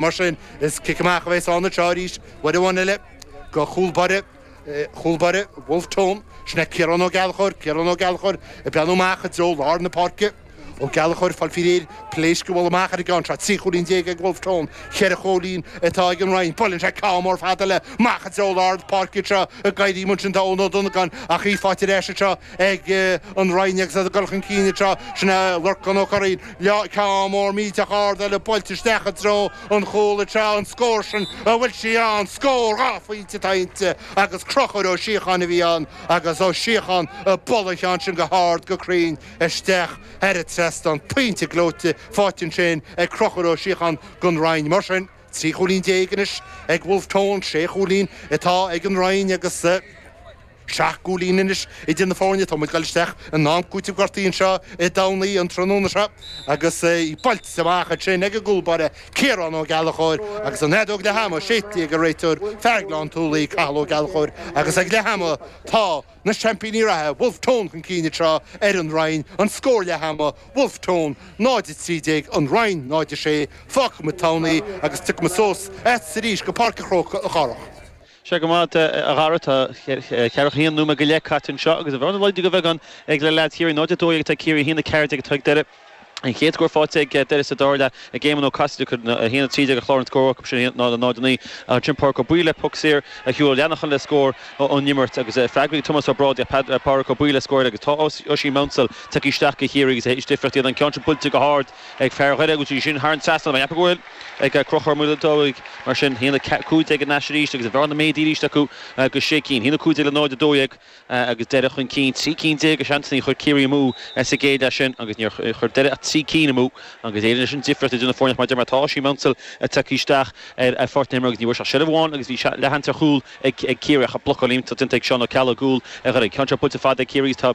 Mar sin, is cic amach a bheas anseo arís, uair amháin eile, go chúl báire, chúl báire Wolfe Tone. Sin é Ciarán Ó Gallchóir, Ciarán Ó Gallchóir, ag breathnú amach i dtreo lár na páirce. Ó Gallchóir, fáil faoi réir, pléasc a bhualadh amach ar an gceann seo. Trí chúilín déag ag Wolfe Tone, ceithre chúilín atá ag an Rinn. Buaileann sé ceann mór fada eile amach i dtreo lár na páirce anseo ag éirí amuigh ansin tá Eoin Ó Donagáin ach í faighte ar ais anseo ag an Rinn agus iad ag dul chun cinn anseo. Sin é Lorcán Ó Curraoin. Le ceann mór millteach ard eile buailte isteach i dtreo an chúil ag tráth an scóir sin an bhfuil sí ann, scór dhá phointe atá inti agus Conchúr Ó Síocháin a bhí ann agus Ó Síocháin ag bualadh an cheann sin go hard, go cruinn isteach thar an trasnán, pointe gleoite, faighte ansin ag Conchúr Ó Síocháin gon Rinn. Mar sin, trí chúilín déag anois ag Wolfe Tone, sé chúilín atá ag an Rinn agus. Seacht gcúilín anois idir na foirne atá muid ag dul isteach in am cúitimh gortaithe anseo i dTamhnaí an tráthnóna seo agus í buailte amach ansin ag an gcúl báire Ciarán Ó Gallchóir agus an fheadóg leath ama séidte ag an réiteoir fear Gleann tSúilí Cathal Ó Gallchóir agus ag leath ama tá na seaimpíní reatha Bhulf Tón chun cinn anseo ar An Rinn an scór leath ama Bhulf Tón 0-13 An Rinn 0-6 Fágfaidh muid Tamhnaí agus tiocfaidh muid suas chugatsa arís go Páirc a' Chrócaigh a Chárthaigh. Sea, go raibh maith agat a Dhara, tá ceathracha haon nóiméad go leith caite anseo agus an bhearna laghdaithe de bheagán ag le leaids Chiarraí, 0-12 atá ag Ciarraí, 1-14 atá ag Doire. An chéad scór faighte ag Doire sa dara leath ag Éamonn Ó Casaide, cuireann 1-13 ar chlár an scór acu sin, 0-9. Ansin Pádraic Ó Baoill le poc saor Hugh Ó Leannacháin le scór ón imirt agus freagra ag Tomás Ó Brádaigh ach Pádraic Ó Baoill le scór eile agus tá Oisín Maunsell tagtha isteach go Chiarraí agus is difríocht iad an ceann sin buailte go hard ag fear Dhoire agus í sin thar an trasnán. Mar a cheapfá go bhfuil ag crochadh ar mhuileann dóigh. Mar sin, 1-15 anois arís agus an bhearna méadaithe arís acu go sé cinn. 1-15 le 0-12 agus Doire chun cinn trí cinn déag de sheansanna chuir Ciarraí amú sa gcéad leath sin agus níor chuir Doire ach trí cinn amú agus Éirinn. Leis an difríocht idir na foirne, mar a deir mé, tá Oisín Maunsell tagtha isteach ar pháirc na himeartha agus ní bhfuair sé ach seilbh amháin agus bhí leathshans ar chúl ag Ciarraí ach blocáil iontach déanta ag Seán Ó Ceallaigh, i gcúl Dhoire. Tá an ceann seo buailte fada ag Ciarraí agus tá.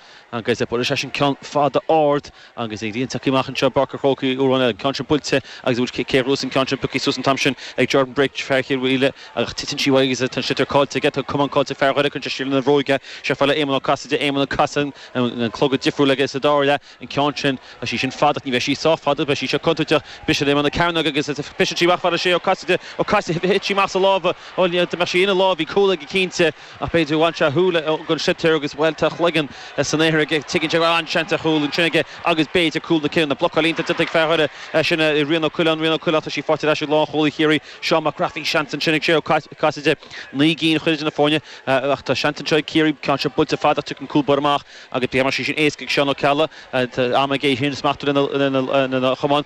agus buaileann seisean ceann fada ard agus ag líontacaí amach anseo, Páirc an Chrócaigh, uair amháin eile, an ceann sin buailte agus a bhfuil céir thuas an ceann sin, pioctha suas an t-am sin ag Jordan Brick, fear Chill Mhaoile, ach titeann sí uaidh agus tá an sliotar caillte aige, tá an camán caillte ag fear Dhoire, cuireann sé siar lena bhróig í fhad le Éamonn Ó Casaide, Éamonn ag casadh, an clogad difriúil aige sa dara leath, an ceann sin, tá sí sin fada ach ní bheidh sí sách fada, beidh sí seo contúirteach, isteach ar imeall na cearnóige agus briseann sí amach fhad le Sé Ó Casaide, Ó Casaide, thit sí amach as a lámha, bhuel, dá mbeadh sí ina lámha, bhí cúl aige cinnte, Ach b'fhéidir, bhain sé a shúile den sliotar agus bhuel tá a chloigeann san aer aige. Tuigeann sé go raibh an-seans ar chúl ansin aige agus b'fhéidir cúl na cinniúna. Blocáil iontach déanta ag fear Dhoire sin é Rian Ó Coileáin. Rian Ó Coileáin, tá sí faighte ar ais ag lánchúlaí Chiarraí, Seán Mac Craith. Bhí seans ansin ag Sé Ó Casaide, naoi gcinn a chur idir na foirne, ach tá seans anseo ag Ciarraí. Ceann seo buailte fada ach tiocfaidh an cúl báire amach agus beidh sé sin éasca ag Seán Ó Ceallaigh. Tá am aige í sin a smachtú lena chamán.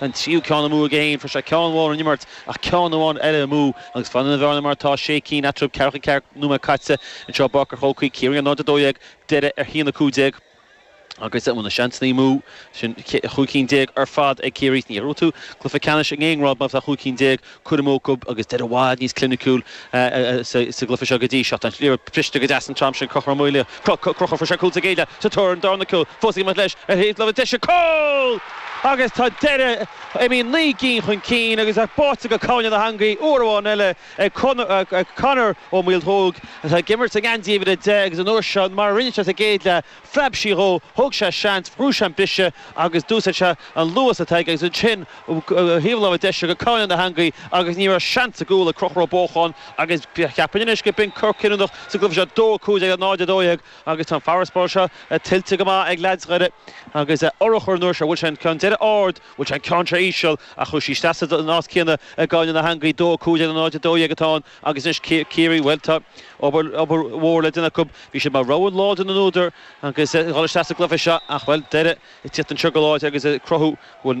an tríú ceann amú ag a haon, fuair sé ceann amháin in imirt ach ceann amháin eile amú agus fanann an bhearna mar atá, sé cinn eatarthu, ceathracha ceathair nóiméad caite. Anseo i bPáirc an Chrócaigh, Ciarraí, 0-12, Doire ar 1-15, agus bhuel na seansanna amú, sin chúig cinn déag ar fad ag Ciarraí, ní bhuafaidh tú cluiche ceannais in aon ghrád má bhíonn cúig cinn déag curtha amú acu agus Doire i bhfad níos cliniciúla sa gcluife seo go dtí seo. Tá sí briste go deas an t-am sin Conchúr Maoile. Conchúr, fuair sé cúl sa gcéad leath sa tóir ar an dara cúl. Fós ag imeacht leis ar thaobh na deise. Cúl! Agus tá Doire imithe naoi gcinn chun cinn agus í báite go cúinne na heangaí uair amháin eile ag Conor Ó Maolmhaodhóg atá ag imirt i ngeansaí uimhir a deich agus an uair seo mar a rinne sé sa gcéad leath phreab sí dhó, thóg sé seans, bhrú sé an bise agus d'úsaid sé an luas atá aige agus ansin thaobh na láimhe deise go cúinne na heangaí agus ní raibh seans sa gcúl ag Conchúr Ó Bócháin agus cheapfainn anois gurb in cor cinniúnach sa gcluife seo, dó a cúig déag le náid a dó dhéag agus tá an farasbarr seo tuillte go maith ag leaids Dhoire agus urchar an uair seo, bhuail sé an ceann deireadh ard, bhuail sé an ceann seo íseal ach chuaigh sí isteach san áit chéanna i gcúinne na heangaí, dó a cúig déag le náid a dó dhéag atá ann. Agus anois Ciarraí, bhuel, tá obair mhór le déanamh acu. Bhí siad mar rogha láidir na n-údar ag dul isteach sa gcluiche seo ach, bhuel, Doire ag teacht anseo go láidir agus ag cruthú go bhfuil